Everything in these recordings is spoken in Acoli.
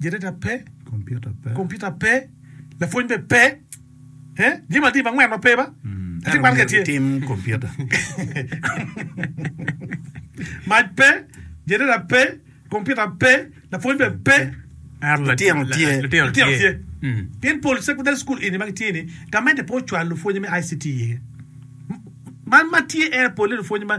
Generator pe. Computer pe. Lapwony bene pe. Eh? Jami mading mangwen ma pe ba? Mm. Ati kwan ke Tim computer. Mac pe. Generator pe. Computer pe. Lapwony bene pe. Aro latino tye. Latino tye. Mm. Pien pol secondary school ini ma gitye ni, gamente pe ocwalo lupwonye me ICT iye. Man ma tye en pole lupwonye ma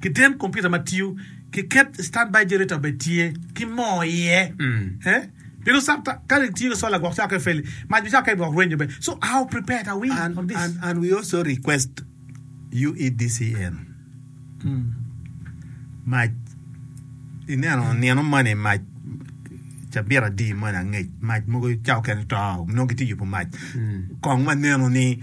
Kiten kompiuta ma tiyo ki ket standby generator bene tye ki moo iye. Pien osak ta ka itiyo ki solar gwok cake feli, mac bicako keken gwok rwenyo bene. So how prepared are we on this? And and we also request UEDCN mac ineno nino moni mac cabit adi moni angec mac mogo cake keken to nongo gitye yubo mac kong maneno ni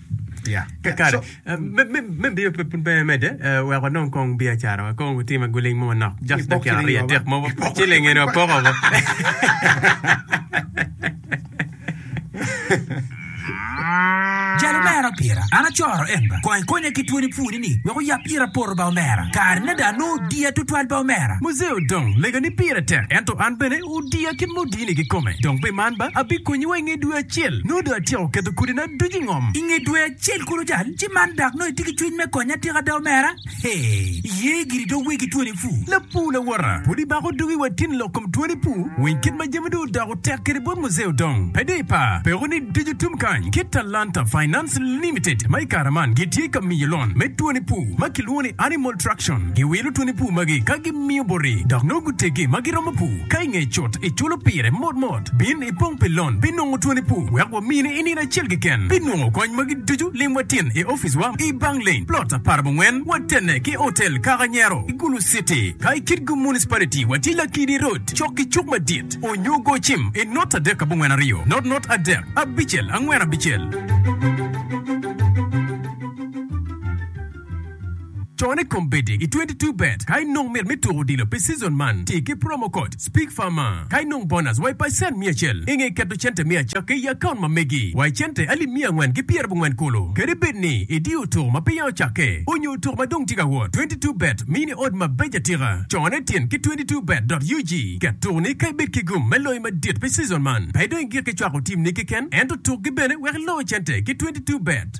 Yeah. Yeah, Kakare. so- Uh, me, me, me biyo pe pun pe mede, uh, wek wanong kong biacara, wakong watime guling mo manok. Just Ipok dakika ciling aryo, yo, adek mo, Ipok. ciling eni wapoko mo. Jal omera pira, an acoro en ba. Kony konya ki twoni pwoni ni, wek oyap ira poro ba omera. Kare nade anongo diya tutwal ba omera? Muzee Odong, lega ni pire tek, ento an bene Odiya ki mudini kikome, dong pi man ba abikonyiwa i nge dwe acel. Nongo dong atyeko keto kodina ducu i ngom. I nge dwe acel kulu cal ci man dak nongo itye ki cwiny me konya atika ada omera? Hee, iye giri dong wegi twoni pur. Lapur lawota, pud ibako dugi wa tin lok kom twoni pur weng kit ma jami dong odoko tek kede bot muzee odong pe dong ipa peko ni ducu tum kany kit Talanta Finance Limited ma i kare man gitye ka miyo lon me twoni pur. ma kilwongo ni animal traction, giwilo twoni pur magi ka gimiyo boti dok nongo guteggi ma giromo pur. Ka i ngeye cut, iculo pire mot mot. Bin ipong pi lon pi nongo twoni pur wek wamini i nino acel keken. Pi nongo kony magi ducu, lim wa tin i oficiwa i Banglain, Plot Aparabongwen, watenne ki Hotel Kaka Nyero, i Gulu City. Ka i Kitgum Municipality, watye Lakidi Road, cok ki cuk madit, onyo go cim i not adek abongwen aryo, not not adek abicel angwen abicel. Con i kombeddi i twenty two bet. Ka inong mit me tuko odilo pi cizon man, ti ki promo code SPEAKFARMA. Ka inong bonus wa i pacent miya acel, i nge keto cente miya cakke i akaunt ma megi wa i cente alip miya angwen ki pyer abongwen kulu. Kadi bed ni idiyo tuko ma peya ocakke, onyo tuko ma dong tye ka wot, twenty two bet mini odd mabeco atika. Con e tin ki twenty two bet dot ug. Ket tukoni ka ibed ki gum me loyo madit pi cizon man. Pe idong i gik ki cwako tim ni keken, ento tuk gi bene wek iloo cente ki twenty two bet.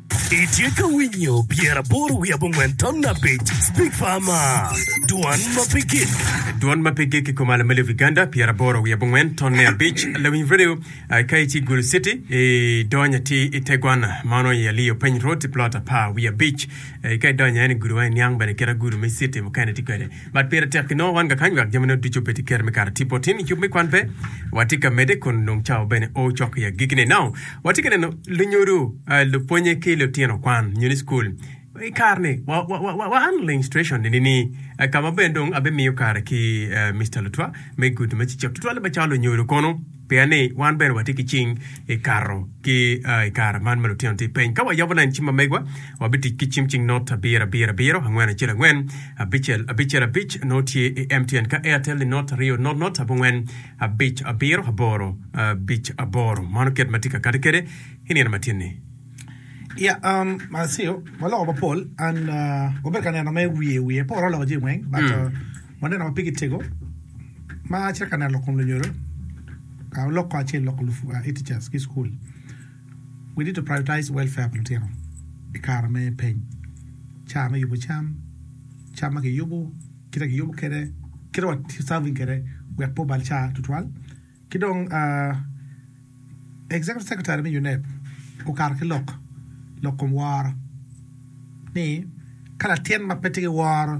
Itye ka winyo pyeraboro wiye abongwen ton abic Speak Farmer Dwan ma pe gik Dwan ma pe gik i kom Alameli of Uganda pyeraboro wiye abongwen ton ne abic Lawiny Radio uh, Ka itye Gulu City i dony ati i te gwan ma onongo i Aliyo Peny Road i plot apar wiye abic uh, Ka idonyo ene Gulu ma i niang bene kit a Gulu me City mukene tye kwede Bad pire tek pi nongo wan ga kany wek jami ne ducu obed i kare me kare. Tipo tin i yub me kwan pe wa tye ka mede kun dong cawa bene oo cok i agiki ne. Nongo wa tye ka neno lunyodo, lupwonye ki lutino kwan nyo ni school i kare ni wa wa wa wa anling station ni ni ka ma bene dong abi miyo kare ki Mister Lutwa me gudo me cicek tutwale ba cawa lunyodo kono. Pien ni wan bene watye ki cing i kato ki i kare man ma lutino tye piny. Ka wayabo lain cim ma megwa, wabitic ki cim cing not abiro abiro abiro, angwen acel angwen, abicel abicel abic, nongo tye i MTN. Ka Airtel ni not aryo not not abongwen abic abiro aboro abic aboro. Mano kit ma tye ka kati kwede i nino ma tye ni. Ya, um, I see you. Waloko mapol and uh, wabedo ka neno me wiye wiye. Pe waroo loko jami weng but uh, Waneno ma pigi tego ma acel ka neno lok kom lunyodo, ka walok kong acel lok lupuc, e-teachers, ki school. We need to prioritize welfare pa lutino i kare me peny, caa me yubo cam, cam ma kiyubo, kite ma kiyubo kede, kite ma wa serving kede wek pe obal caa tutwal. Ki dong Executive Secretary me UNEB okato ki lok lok kom woro ni ka latin ma pe tye ki woro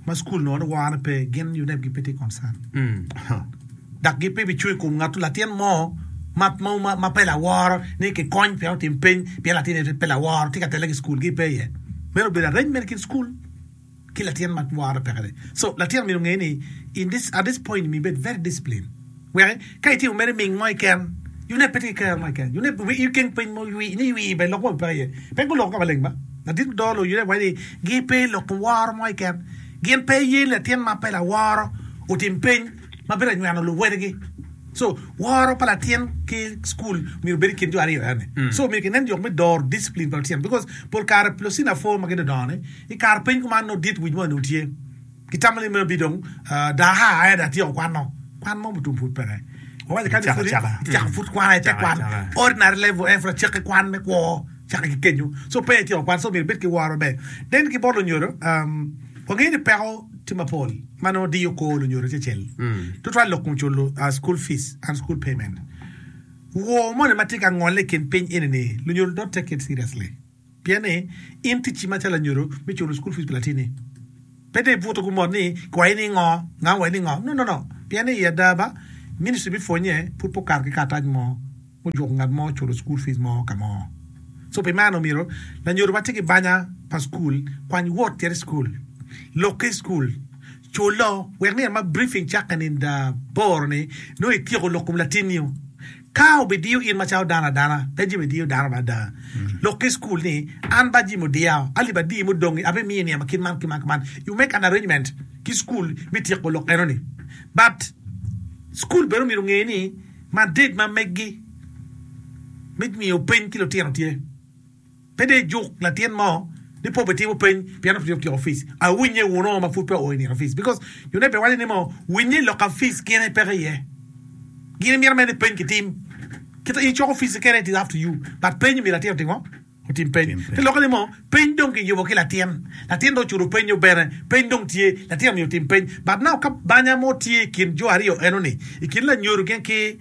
ma cukul nongo ni worone pe gin UNEB gi pe tye concern dak gi pe bicung i kom ngato latin mo ma ma ma pe laworo ni ki kony pien otim piny pien latin pe laworo tye ka tele ki cukul gi pe iye meno obedo arrangement i kin cukul ki latin ma lworo pekere so latin myero onge ni at this point myero ibed very discipline wek ka itimo mere ming mo keken you need pete ki kero mo keken you need i keng piny mo ni i wi bene lok mo pe iye pe guloko ka maleng ba ladit mudoo ni you need wait ni gi pe loko woro mo keken gin pe ye latin ma pe laworo otim piny. ma bino nyweno luwotgi. So, woro pa latin ki cukul myero obed i kin jo aryo ena ni. So, myero kinen yok me doro discipline pa lutino because pol kare locina pwo ma gidodongo ni i kare piny kuman nongo dit wic mo nongo tye. Gitamo ni maybe dong daa haa aye daa atyeko kwan nongo. Kwan mo mutum pud peke. Wawaco kadi pudi icako pud kwan aye te kwan ordinary level en pud acakki kwan me kwo. cake ki kenyo so pe ityeko kwan so myero ibed ki woro maber then ki bot lunyodo wangeyo ni peko tye mapol ma nongo diyo kor lunyodo acecel tutwal lok kun culo school fees and school payment wor moni ma tye ka ngole i kin piny eni ni lunyodo don't take it seriously pien ni in ticci macalo anyodo me culo school fees pi latini pe dong ibuto gu mot ni kiwayi ni ngo nga owayi ni ngo no no no pien ni i ada ba ministry me pwonye pud pe okato ki karatac mo. mujuko ngat mo culo cukul fic mo ka mo. So pi meno, myero lanyodo ma tye ki banya pa cukul kwany wot tere i cukul, lokke i cukul, culo wek nino ma briefing cakke nida aboro ni nongo ityeko lok kom latinniu. Ka obidiyo in macalo dano adana, pe jami diyo dano mada. Lokke i cukul ni, An ba jami odiya, alib adiyi mudongi abi miyi niang ma kit man ki man ki man. You make an arrangement ki cukul me tyeko lok enoni. But cukul bene omyero onge ni, madit ma megi me ngiyo piny ki lutino tye. Pe dong ijuk latin mo ni pe obitimo piny pien pe otyeko fees. Awinye wunu ma pud pe oo i nino fees because jo ne pe waco ni mo winye i loka fees gin aye peke iye. Gin imito mere ni piny kitim kita in icoko fees kene it is up to you but piny myero latin otim ngo? Otim peny ki lokke ni mo, peny dong ki yubo ki latin, latin dong ocuro penyo bene, peny dong tye, latin omiyo otim peny, but now ka banya mo tye i kin jo aryo eno ni, i kin lanyodo gin ki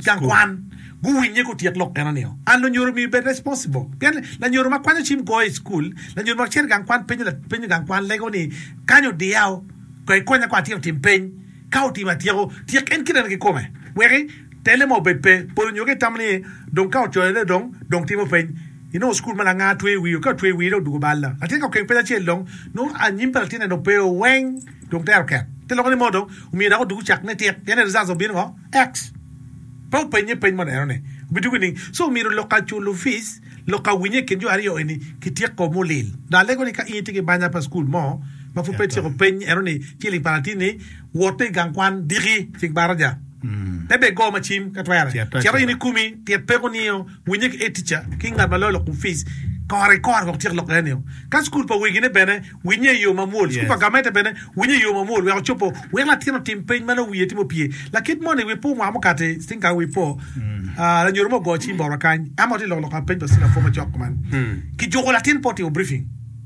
gang kwan, gu winye gu tyek lok eno nio, and lunyodo omiyo bed responsible, pien lanyodo ma kwanyo cim goyo i school, lanyodo ma cito i gang kwan penyo penyo gang kwan lego ni kany odiya o, ko ikonya ko atyeko tim peny, ka otimo atyeko, tyek en kite ne ki kome, weki. Telle ma obed pe, pol onyo ki tamo ni dong ka ocoyone dong dong timo peny. Inongo school ma langa tweyo wii oka tweyo wii dong dugo bal la. Latin ka okeng peny acel dong nongo anyim pa latinne dong pe o weng dong tero ket. Te loko ni mo dong omiyo dako dugo cak ne tik pien ni results dong bino ngo? Ex. Pe openye peny mo neno ni obi dugo ining. So omyero lok ka culo fees, lok ka winye ikin jo aryo eni ki tyeko mulil. Dong alego ni ka in itye ki banya pa school mo ma pud pe ityeko peny eno ni ciling pa latinni Woto i gang kwan diki cik baraja, pe bed go macim ka twere. Cito in ikumi tyen peko nio, winye ki edtica ki ngat ma loyo lok kom fic kore kore wek otyek lok enio. Ka cukul pa wegi ne bene winye iyo mamwol, cukul pa gamente bene winye iyo mamwol wek ocopo wek latin otim peny ma nongo wiye tye mopye. Lakit moni wi pur mwaka mukati cing kare wi po, lanyodo mo ogoyo cim bot wa kany, ema watye lok lok ka peny pa cing lapor macok kuman. Kijuko latin pe otimo briefing.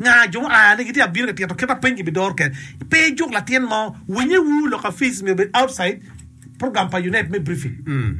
Nga jo mua ni gitye abino ka tito kit ma piny gibidoro kede? Pe ijuk latin mo. Winye wu lok afic nyo bed outside program pa UNEB me briefing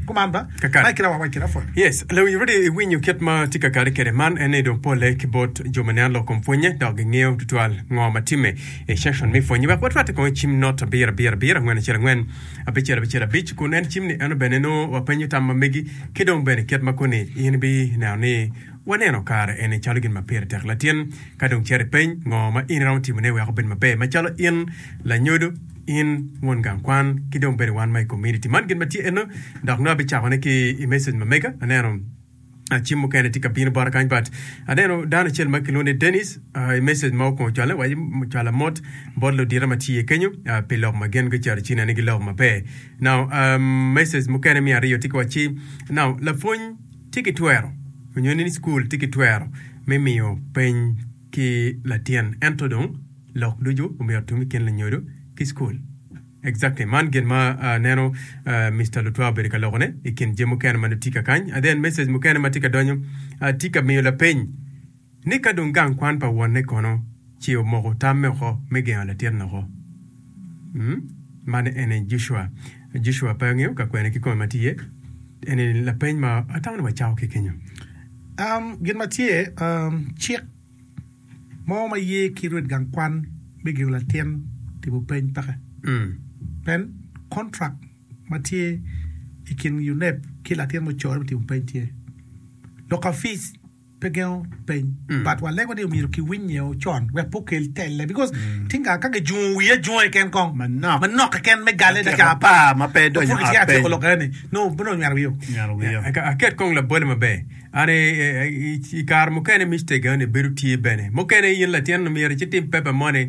kuman ba. Kakare. Kira wa wac kira pwony. Yes, Lawiny Rudy iwinyo kit ma tye ka kare kede man en ni dong pole ki bot jo ma nen lok kom pwonye dok gi ngeyo tutwal ngo ma time i section me pwonye. Wek watwate kong icim not abir abir abir angwen acel angwen abicel abicel abic kun en cim ni eno bene nongo wapenyo tam ma megi ki dong bene kit ma koni in ibi neno ni Waneno kare eni calo gin ma pire tek latin. Ka dong cer ipeny, Ngo ma in iromo timone wek obed maber macalo in, lanyodo, in, won gang kwan, ki dong bene wan ma i kominiti? Man gin ma tye eno, dok nongo abicakone ki i message ma mega. Aneno cim mukene tye ka bino bota kany but aneno dano acel ma kilwongo ni Dennis i message ma okongo cwale waco cwala mot bot ludita ma tye kenyo pi lok ma gin gicito ci nene giloko maber. Now message mukene me aryo tye ki waci now lapwony tye ki twero nyo ni cukul tye ki twero me miyo peny ki latin ento dong lok ducu omyero otum i kin lanyodo ki cukul. Exactly. Man gin ma aneno Mister Lutwa obedo ka loko ne i kin jami mukene ma nongo tye ka kany. And then message mukene ma tye ka donyo tye ka miyo lapeny Ni ka dong gang kwan pa wonne kono ce omoko tamme oko me gengo latin loko. Umm, man en aye Joshua. Joshua pe angeyo ka kwene kikome ma tye. En ni lapeny ma atamo ni wacako ki kenyo. Umm, gin ma tye, umm, cik mo ma ye ki rwed gang kwan me gengo latin timo peny peke. Umm. Pien contract ma tye i kin UNEB ki latin mucorre me timo peny tye. Lok ka fees. pe gengo peny but wa lego ni omyero ki winy nge ocon wek pe okel telle because tinga ka ki jungo wiye ajunga keken kong manok keken me gale da ca apar ma pe donyo ot peny apud ki tyeko lok eni no onongo nywero wiyo nywero wiyo aket kong labole maber an ikare mukene mistake eni bedo tye bene mukene in latin omyero ci tim paper money.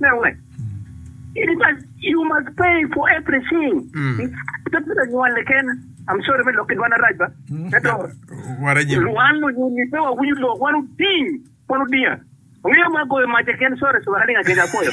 Me wek in ical you must pay for everything pe pi lanywali kene I'm sorry me lok ki dwana rac ba ento lwan onyo pe wawinyo lok wan oding wan odinga ongeyo ma goyo mac keken sorry suka kalinga kec apoyo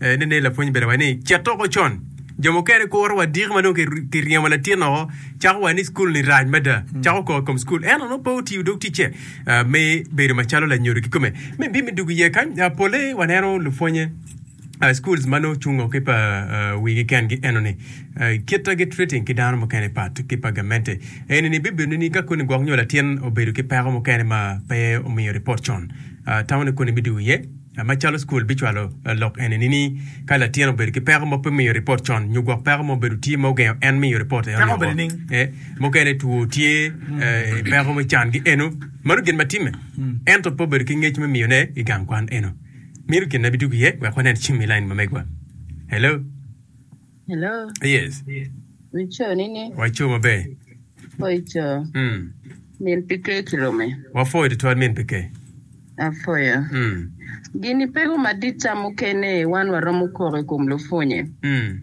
Nen ni lapwony obedo wa ni cet oko con. Jo mukene kuro wa diki ma dong kiryemo latin oko, cako wa ni cukul-ni rac mada, cako kor kom cukul. Ento nongo pe otiyo dog ticce me bedo macalo lanyodo kikome. Me bim i dug iye kany, pole waneno lupwonye schools ma nongo cungo ki pa wigi kengi enoni, kit ma gitreating ki dano mukene pat ki pa gamente. Enini bibedo ni ka koni gwok nyo latin obedo ki peko mukene ma pe omiyo report con, tamo ni koni me dug iye. Macalo cukul bicwalo lok enini ni, Ka latin obedo ki peko ma pe miyo ripot con nyo gwok peko ma obedo tye ma ogengo en miyo ripot eno nio woko, mukene two tye, peko me can ki eno, mano gin ma timme ento pe obedo ki ngec me miyone i gang kwan eno. Mino kinne bidwogo iye wek wanen cim i lain ma megwa. Hello? Hello. Yes. Wico ni ne. Waco maber. Wico. Mm. Min pike ki lome. Wafoyo tutwal min pike. Afoyo. Mm. Gini peko madit ca mukene wan waromo koko i kom lupwonye. Mm.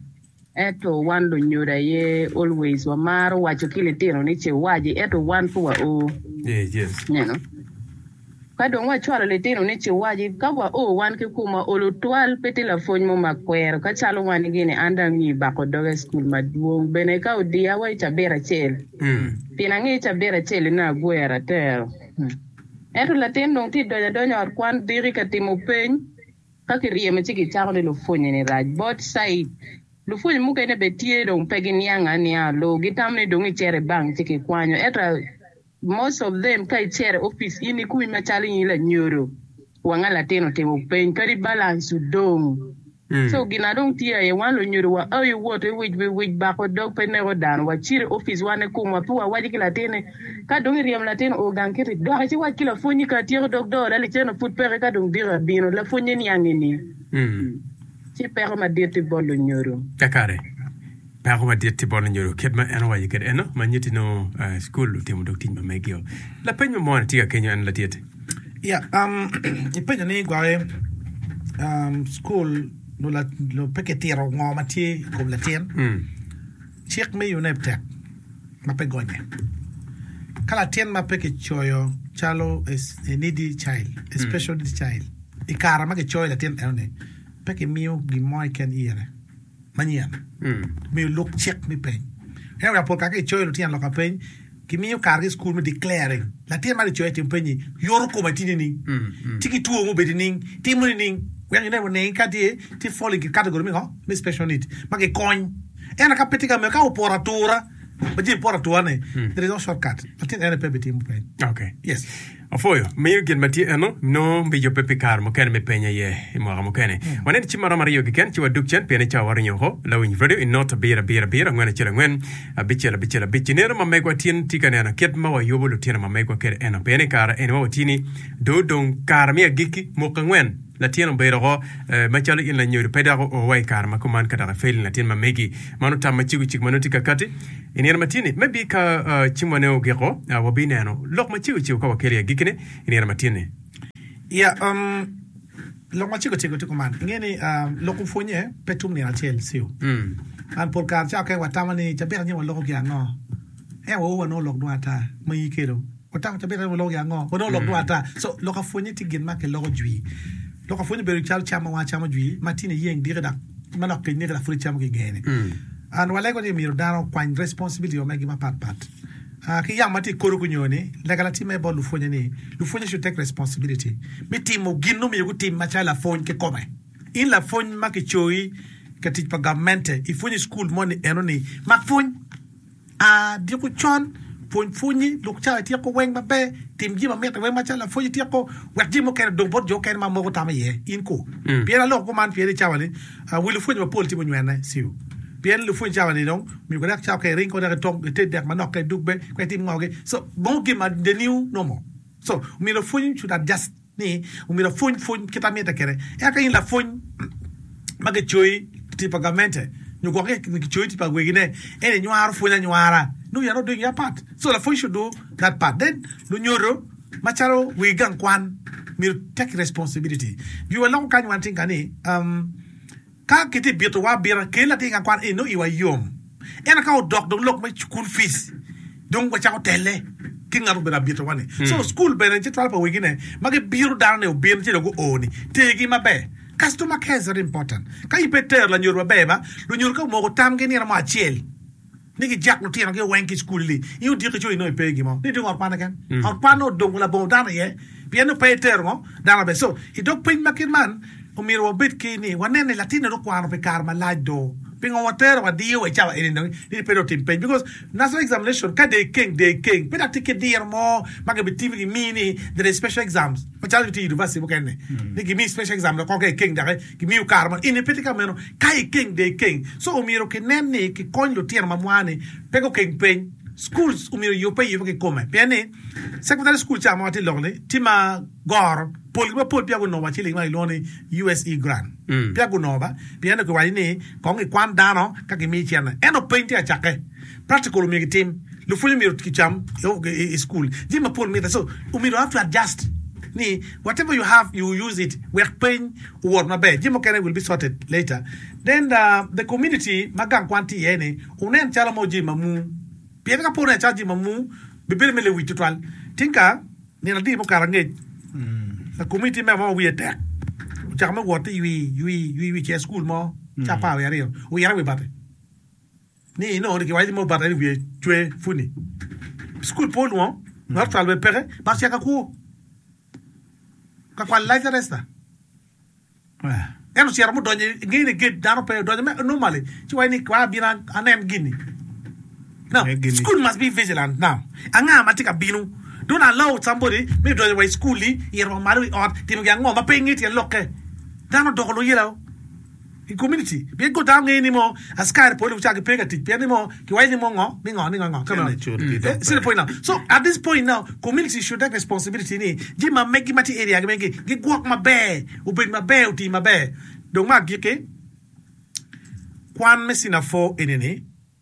Eto wan lunyodo aye always wamaro waco ki litino ni ce waci eto wan pe wa o. Yes, yes. Neno. Ka dong wacwalo litino ni ciwaji, ka wa oo wan ki kum wa olo twal, pe tye lapwony mo ma kwero ka calo wan ni gini an dong angi bako doga i cukul madwong bene ka odiya wa i cabit acel pien angi i cabit acel i nongo agwero atero. Ento latin dong tye donyo adonya ot kwan diki ka timo peny ka ki ryemo ci ki cako ni lupwonye ni rac both side. Lupwonye mukene bene tye dong pe gi niango anianga loo gi tamo ni dong i cito i bank ci ki kwanyo ento Most of them ka icere office in ikumi macalo in lanyodo wanga latin otimo peny kadi balance odong so gin adong tye aye wan lunyodo wa aye woto iwic wi wic bako dog pe neko dano wa cire i office wan ni kumwa pe wa waco ki latin ni ka dong iryemo latin oo gang kiti dok ici wac ki lapwony ni kara tyeko dog dola liceno pud peke ka dong diko abino lapwony ni niang eni ci peko madit ti bot lunyodo. Kakare. Peko madit tye bot lanyodo kit ma en owaco kede eno ma nyeti nongo cukul otimo dok tic ma megio. Lapeny ma moni tye ka kenyo en latit. Ya, um, ipenyo ni gwake um, cukul nyo la- nyo pe kitito ngo ma tye i kom latin, Mm. cik me UNEB tek ma pe gonye. Ka latin ma pe kicoyo calo a s- a needy child, a special needs child, i kare ma kicoyo latin enoni, pe kimiyo gin mo keken ire. manyen omiyo luk cik me peny. Ento ka pol kare ka kicoyo lutino lok pa peny, kimiyo kargi i cukul me declaring. Latin ma kicoyo etimo peny-nyi, yoto kome tye nining? Ci ki two mubedo nining? Timo nining? Wek ine wa nenge ka tye tye fall into category me ngo? Me special need ma kikony. Ento ka pe tye ka meno, ka opoto atura, ma jami poto atura-ni, there is no shortcut, latin en aye pe bitimo peny. Yes. Apwoyo miyo gin ma tye eno nongo me yubbe pi kare mukene me peny aye i mwaka mukene. Wanen cim maromo aryo keken ci wadug cen pien icawa waringo oko lawiny radio i not abiro abiro abiro angwen acel angwen abicel abicel abic. I nino ma megwa tin tye ka neno kit ma wayubo lutino ma megwa kede eno pien i kare eni wa watini do dong kare me agikki muka angwen latin obedo oko ma calo in lanyodo pe dok oo wa i kare ma kuman ka dok ifelni latin ma megi. Man otam ma cego cik ma nongo tye kakati. I nino ma tye ni, maybe ka cimwane ogiko, wabineno lok ma cego cego ka wakelo i agikkine i nino ma tye ni. Ya, um, lok ma cego cego tye kuman. Inge ni um, lok opwonye pe tum nino acel siu. Man pol kare cawa keken watamo ni cabit anyim waloko ki ango, ento waowa nongo lok dwong ata ma iyi kelo. Watako cabitta ni waloko gin ango ma dong olok dong ata. So lok apwonye tye gin ma kiloko jwi. Lok apwonye obedo calo cam ma wan wacamo jwi ma tini iyeng diki dok ma lok kenyne dok pud icamo ki ingene. And walego ni myero dano okwany responsibility wa megi mapat pat. Ah ki yam ma tye i kori gunyo ni lega latim aye bot lupwonye ni lupwonye should take responsibility me timo gin nongo myero gutim macalo lapwony kikome. In lapwony ma kicoyi ka tic pa gamente ipwonyo i school mo ni eno ni mak pwony. A Diko con, pwony pwonyi lok cawa ityeko weng maber, tim jami mamit iweng macalo lapwony ityeko, wek jami mukene odong bot jo okene ma moko tamo iye in ko. Pien aloko kuman pien i cawa ni wi lupwony mapol tye munywene siu. Pien lupwony cawa ni dong omiyo gurek cawa ka iring ko dek itong ited dek manok ka idug be ka itim ngo gi so bong gin ma deniu nomo so omiyo lapwony should adjust. ni omyero apwony pwony kit ma mitte kwede. Eka in lapwony ma kicoyi tic pa gamente nyo gwok ni kicoyi tic pa wegine en inywaro pwony anywara nongo yat odonyo iye apat so lapwony should do that part then lunyodo macalo wegi gang kwan myero take responsibility. Jwi waloko kany wan tye ka ni. Ka kitye bitowa abita, kel latin ka kwan eni nongo iwa yom. Ento ka odok dong lok me cukul fic, dong wacako telle ki ngat obedo abitowa-ni. Co cukul bene citwalo pa wegine ma gibiro dano ni obin ci dong guo-ni, tergi maber. Customer care is very important. Ka in pe itero lanyodo maber ma, lunyodo ka omoko tamgi nino mo acel, ni gijak lutinogi weng ki i cukul-li, in odiki co inongo ipe i gin mo, ni dong ot kwanne ken, ot kwanne odongo labongo dano iye, pien ni pe itero ngo dano maber. So, i dog piny ma kit man, omyero wabed ki ni wanen ni latinni dong okwano pi kare malac do, pingo watero wadiyo wa i cawa eni dong ni pe dong otim peny? Because national examination ka de ikeng de ikeng, pe dong tye ki diro mo ma gibitimi gimi ni there is special exams, macalo nyo tye i University mukene-ni, ni gimiyi special exam dok kong ka ikeng daki. Gimiyo kare ma in ipe tye ka meno ka ikeng de ikeng. So omyero ki nen ni ki kony lutino ma mwar ni pe gu keng peny. Schools omyero yubbe ayuba ki kome pien ni secondary school ca ma watye ilok ni tye ma goro pol gi ma pol peya gunongo wa ciling ma kilwongo ni USE grant peya gunongo ba pien ni kiwaco ni kong ki kwan dano ka ki miyi cene ento peny tye ka cake practical omyero ki tim lupwony omyero ki cam i school jami ma pol mitte so omyero have to adjust ni whatever you have you use it wek peny owot maber, jami mukene will be sorted later, then the community ma gang kwan tye iye ni wunen calo mo jami ma mung, pien ka pe wuneno calo jami ma mung bibedo me lewic tutwal, tingka nino adi mukato angec the community member mo ma wiye tek ocako me wot ni ywii ywii ywii ywii cito i school mo cawa par wiye aryo, oito i wi bati. ni inongo ni kiwaco ni Mobata en wiye cwe puni. Cukul pe olwongo, not twal bene peke, bot ceka kwo. Kakwal lac na resta. En ocito mudonyo i ngeye ni gate dano pe odonyo me normally ci waco ni kwa abino anen gini. Now, Nge gini. school must be vigilant now. Anga ma tye ka bino? Don't allow somebody me donyo wa i school-li, ito wa malo i ot, timo gin ango ma pe inge tyen lokke. Dano odoko luyilau. i komuniti pien kor dano ngeyo ni mo askari pole gucako gipe ka tic pien ni mo kiwaco ni mo ngo ni ngo ni ngo come on see the point now so at this point now komuniti should take responsibility ni jami ma megi ma tye i area gi megi gigwok maber obed maber oti maber dong me agiki kwan me cinephour eni ni.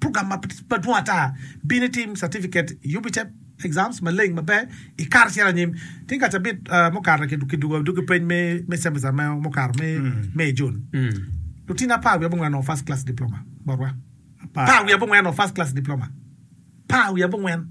Program madwong ata bino itim certificate UBTEP exams maleng maber ikato icito anyim. Tye ka cabit mukato kidugo adugi peny me cemester mo mukato me i Jun. Lutino apar wiye abongwen onongo first class diploma botwa. Apar wiye abongwen onongo first class diploma. Apar wiye abongwen.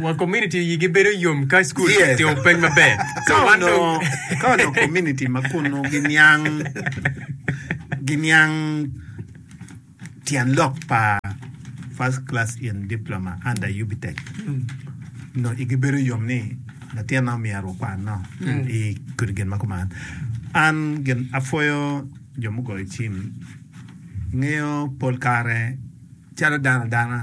Wang komuniti iyigi bedo yom ka cukul kitimo peny maber. Ka onongo komuniti ma kunnu giniang tyen lok pa First Class in Diploma under UBTEC, nongo igi bedo yom ni latinna myero okwanno i kodi gin ma kuman. An gin apwoyo jo mugoyo cim. Ingeyo pol kare calo dano dana,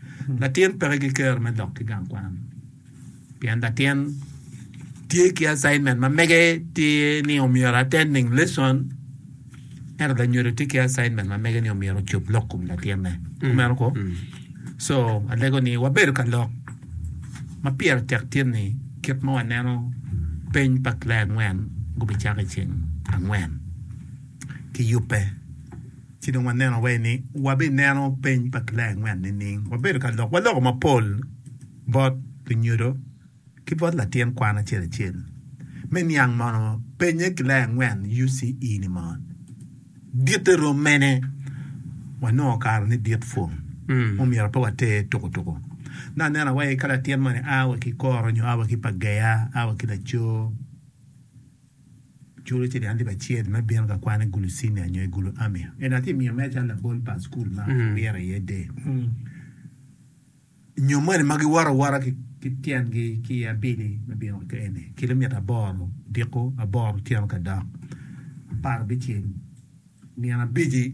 Latin peke gikero me lok ki gang kwan pien latin tye ki assignment ma mege tye ni omyero attending lesson ento lanyodo tye ki assignment ma mege ni omyero ocub lok kom latinne kumeno ko so alego ni wabedo ka lok ma pire tek tye ni kit ma waneno peny pa clae angwen gubicako i ceng angwen ki yubbe. Ci dong waneno wai ni wabineno peny pa kilaya angwen nining? Wabedo ka lok waloko mapol bot lunyodo ki bot latin kwan acel acel. Me niang mono penye kilaya angwen UCE ni mo ditte rom mene, wanongo kare ni dit pwong omyero pe water tuku tuku. Nongo aneno wai ka latin moni a wa ki koro nyo a wa ki Pagea a wa ki Lacoo. Curu ci an tye ba cel me bino ka kwan i gulu cinia nyo i gulu ami. Ento atye miyo mere calo labol pa cukul ma awire iye der. Nyo moni ma giwoto awota ki tyengi ki i abili me bino ka eni, kilomita aboro odiko, aboro otyeno ka dok, apar bicel nino abici.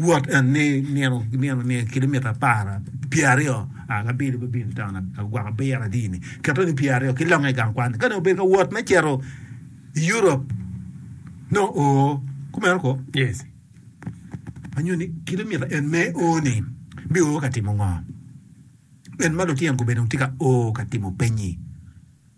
Wot eni nino ki nino ni kilomitan apar pye aryo a ka bino me bino i taun agwok abiro adi-ni, keto ni pye aryo ki longe i gang kwan-ni. Ka dong obedo ka wot me cito i Europ, nongo o kumeno koo? Yes. Ma nyuto ni kilomitan en me o-ni bio o ka timo ngo? En ma lutino gube dong tye ka o ka timo pennyi.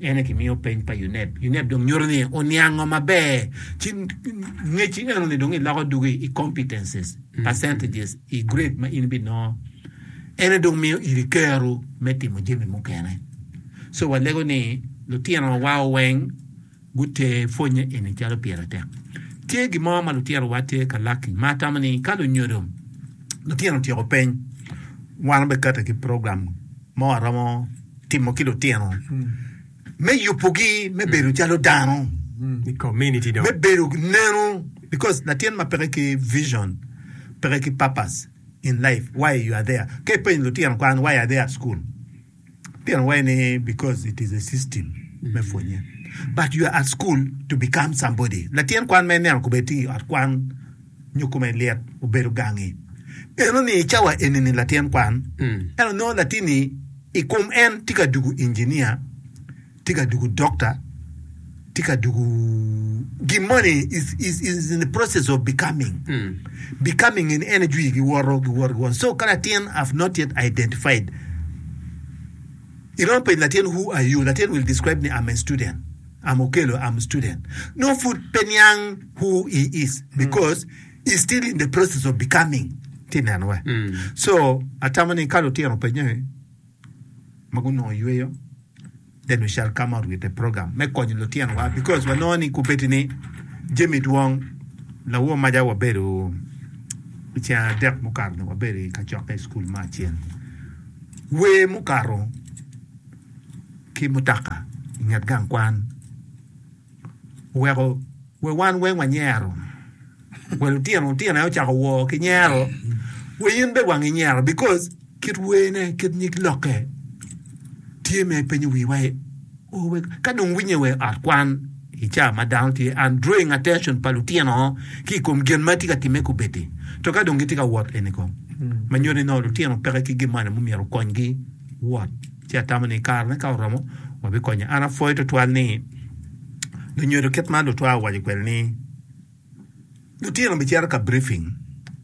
En aye kimiyo peny pa UNEB. UNEB dong nyuto ni oniango maber ci ngeci enoni dong iloko dugo i competencies, mm. percentages i grade ma in ibinongo. En aye dong miyo iri kero me timo jami mukene. So walego ni lutinowa weng gute pwonye eni calo pire tek. Tye gin mo ma lutinowa tye ka laki ma atamo ni ka lunyodo lutino otyeko peny wan obekate ki program mo aromo timo ki lutino me yubogi me bedo calo dano me bedo neno because latin ma peke ki vision peke ki purpose in life why you are there ka ipenyo lutino kwan why are they at school lutino waci ni because it is a system me pwonye but you are at school to become somebody latin kwan ma ineno kobedi tye i ot kwan nyo kome lit obedo gangi. Eno ni i cawa enini latin kwan eno nongo latinni i kom en tye ka dugu injinia, tye ka dugu dokta, tye ka dugu gin moni is is is in the process of becoming becoming in energy giwoto giwoto giwoto so ka latin have not yet identified iromo penyo latin who are you latin will describe ni am a student. I'm Okello I'm student nongo pud pe niang who he is because he still in the process of becoming ti neno wa so atamo ni ka lutino pe nyo ma gunongo yweyo then we shall come out with a program me konyo lutino wa because wa nongo ni kubedi ni jemi dwong lawo maja wa bedo i cen adek mukato ni wa bedo i kacokke i school me acel wer mukato ki mutoka i nget gang kwan oweko wa wan weng wanyero, wa lutino lutino aye ocako wor ki nyero wa in bene wangi nyero because kit werne kit nyig lokke tye ma ipenyo wiwa aye oweko ka dong iwinye wa i ot kwan i ca ma dano tye and drawing attention pa lutino ki i kom gin ma tye ka timme kubeddi to ka dong gitye ka wot eni kong ma nyuto ni nongo lutino peke ki gin moni ma myero okonygi. Wot. Ci atamo ni i karene ka oromo, wabikonye. An apwoyo tutwal ni lunyodo kit ma lutwa owaco kwede ni, Lutino bicito ka briefing,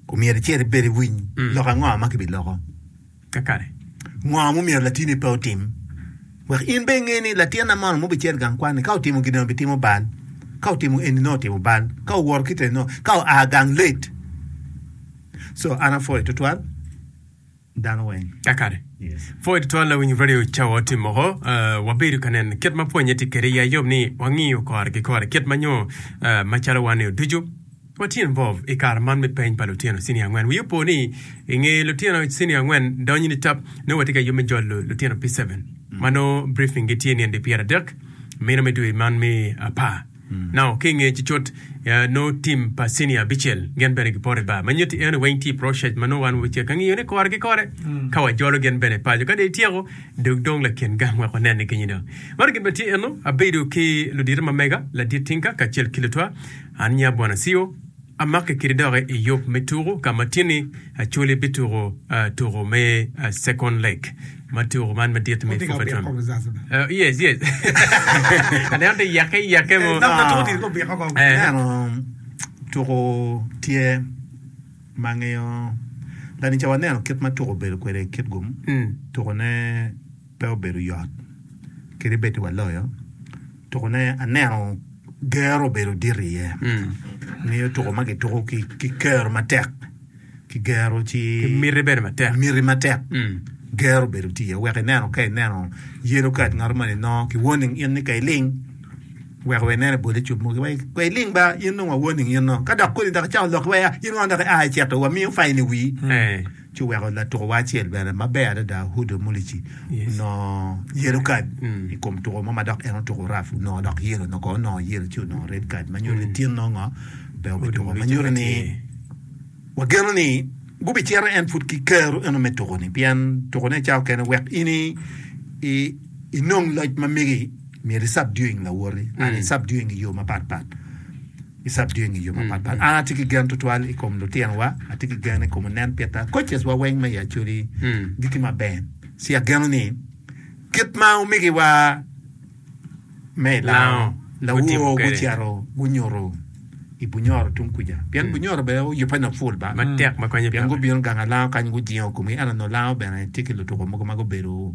ku myero icit ibed iwiny lok ango ma kibiloko, kakare ngo ma omyero latini pe otim, wek in bene inge ni latin na mono ma obicito gang kwan-ni ka otimo gin eni obitimo bal, ka otimo eni nongo otimo bal, ka owoto kit eni nongo, ka oa gang late. So an apwoyo tutwal. dano weng. Kakare. Pwod twal lawiny radio ca wa otim moko, wabedo ka neno kit ma pwonye tye kede ya yom ni wangiyo kore ki kore kit ma nyo ma calo wan nio ducu wa tye involve i kare man me peny pa lutino cini angwen. Wi opo ni inge lutino cini angwen donyo ni tap nongo watye ka yub me jolo lutino pi seven ma nongo briefing gi tye nindi pyer adek mino me dwe man me apar. Nao ki i nge cicot nongo tim pa cinia abicel gin bene gipoto i bar ma nyutti eno weng tye i procet ma nongo wan wacek ka ngiyo ni kore ki kore ka wajolo gin bene paco ka dong ityeko dog dong lakin gang wek wanen ni genyina maro gin bene tye eno abedo ki ludito ma mega ladit tinka kacel ki lutwa an nya bwana cio Amaki kiti dok i yub me tuku ka ma Tini Acholi bituku tuku me Second Leg ma tuku man madit me FUFA. Tuku tye ma ngiyo lanica waneno kit ma tuku obedo kwede i kit gum, tukune pe obedo yot kadi bed ni waloyo. Tukune aneno gero obedo dit iye. Ngeyo tuko ma kituko ki ki kero matek. Ki gero ci Ki miti bene matek. miti matek. Gero obedo tye iye. Wek ineno ka ineno yellow card ngato moni nongo ki warning in ni ka iling wek wa inene bole cub mogo wa wa iling ba in nongo wa warning in nongo. Ka dok kodi dok icako lok ki wa ya in wano dok ia icito wamiyo fine i wii. ci oweko latukowa acel bene maber adada Hudo Mulici onongo yellow card i kom tuko mo ma dok en otuko rough onongo dok yellow nongo kono onongo yellow ci onongo red card ma nyuto ni tin nongo pe obituko ma nyuto ni wageno ni gubicito en pud ki kero eno me tuko-ni pien tukone ca okene wek in i, i, inong loc ma megi myero i subduing lawoti and i subduing i yo mapat pat Isab dyeng i yo mapatpat. An atye ki gen tutwal i kom lutinowa, atye ki gen i kom onen pita coaches wa weng me i Acholi gi ki Maben. Ci ageno ni kit ma omegiwa me i Lango lawor gucito gunyuto i Bunyoro tung kuca, pien Bunyoro bene oyubbe nok full ba, pien gubino gang a Lango kany gujingo komgi, ento nongo Lango bene tye ki lutuko mogo ma gubedo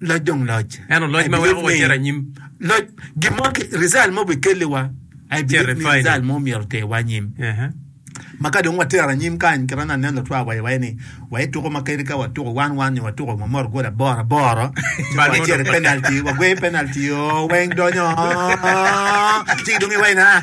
Loc dong loc. Ento loc ma weko wacit anyim. Loc gin mo result mo bikelliwa. Ai believe ni result mo myero oterwa anyim. Uh -huh. Ma ka dong watero anyim kany kit ma nongo aneno lutwa wa iwaye ni waye tuko ma kadi ka watuko wan wan nyo watuko ma mot gol aboro aboro wacito penalty wagweyo penalty oo weng donyo ci dong iwaye na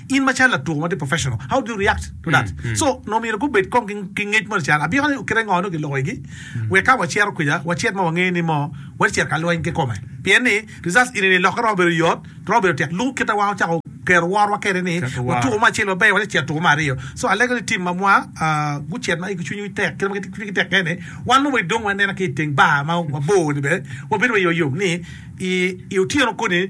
In macalo latuko ma tye professional, how do you react to that? So nongo omyero gubed kong ki ngec mo nican abika ni kite ngo nongo giloko igi wek ka wacito kwica wacit ma wangeyo ni mo watye cito ka lweny kikome. Pien ni results eni ni lokke romo bedo yot, romo bedo tek lubo kite wa ocako kero worwa kede ni watuko me acel maber watye cito tuko me aryo. So alego ni team mwa gucit ma igi cwiny gi tek kit ma cwiny gi tek kene wan nongo wa idong wanena ki iteng bar ma wabor ni bene wabedo wa yom yom ni i otyeno koni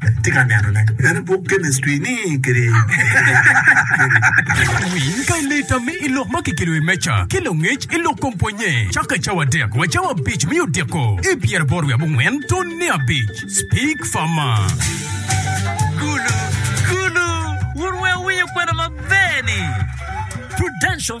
Atye ka nenone en i buk chemistry ni kadi. Ket winy pa i lita me i lok ma kikelo i wi meja ki langec i lok kom pwonye cakke cawa adek wa cawa abic me odiko i pyeraboro wiye abongwen tun ne abic. Speak Farmer. Gulu, gulu, wun wek wuwinyo kwena maber-ni. Prudential.